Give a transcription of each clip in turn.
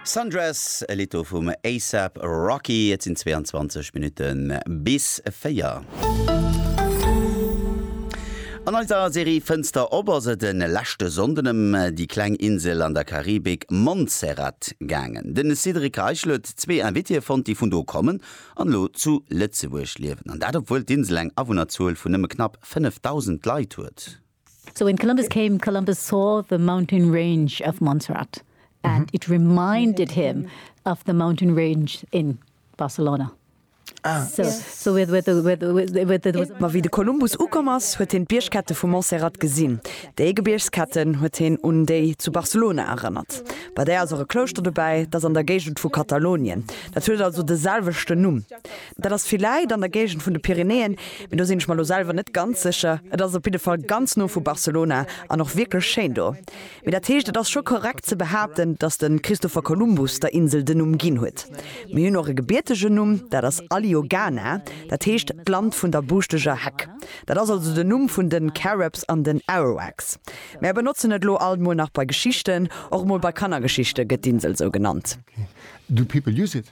Sundress, e Lidd do vum A$ap Rocky. Et sinn 22 Minutte bis 4. An eiser Serie Fënster op ass et e leschte Sonnden ëm déi kleng Insel an der Karibik Montserrat gaangen. De Cédric Reichel huet zwee Invitéë fonnt, déi vun do kommen an elo zu Lëtzebuerg liewen. An dat obwuel d'Insel eng Awunnerzuel vun nëmme knapp 5.000 Leit huet. So when Columbus came, Columbus saw the mountain range of Montserrat and it reminded him of the mountain range in Barcelona. Ma wéi de Kolumbus ukomm ass, huet hien d'Biergkette vu Montserrat gesinn. Déi Gebiergsketten huet hien un déi zu Barcelona erënnert. Bei där ass och e Klouschter dobäi, dat ass an der Géigend vu Katalonien. Dat huet also de selwechten Numm. Dat ass villäit an der Géigend vun de Pyrenäen, mee do sinn ech mer elo selwer net ganz sécher. Et ass op jidde Fall ganz no vu Barcelona an och wierklech schéin do. Mee dat heescht, et ass scho korrekt ze behaapten, datt de Christopher Columbus der Insel den Numm ginn huet. Mir hunn och e gebiertegen Numm, dat ass Aliogana, dat heescht d'Land vun der buuschteger Heck. Dat ass also den Numm vun de Caribs an den Arawaks. Mär benotzen et elo alt mol nach bei Geschichten. Och mol bei Kannergeschichte gëtt d'Insel esou genannt. Do people use it.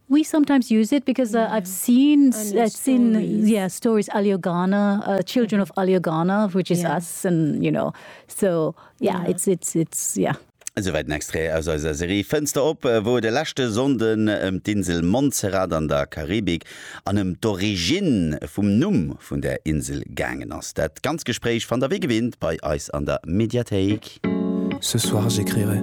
We sometimes use it because uh, I've seen s- Alio uh, seen stories. yeah stories Alio Ghana, uh, children of Alio Ghana, which is Yeah. us, and you know, so yeah, Yeah. it's it's it's yeah. Esouwäit en Extrait aus eiser Serie Fënster op, wou et e leschte Sonnden ëm d'Insel Montserrat an der Karibik an ëm d'Origine vum Numm vun där Insel gaangen ass. Dat ganz Gespréich fannt der wéi gewinnt bei eis an der Mediathéik. Ce soir j'écrirai.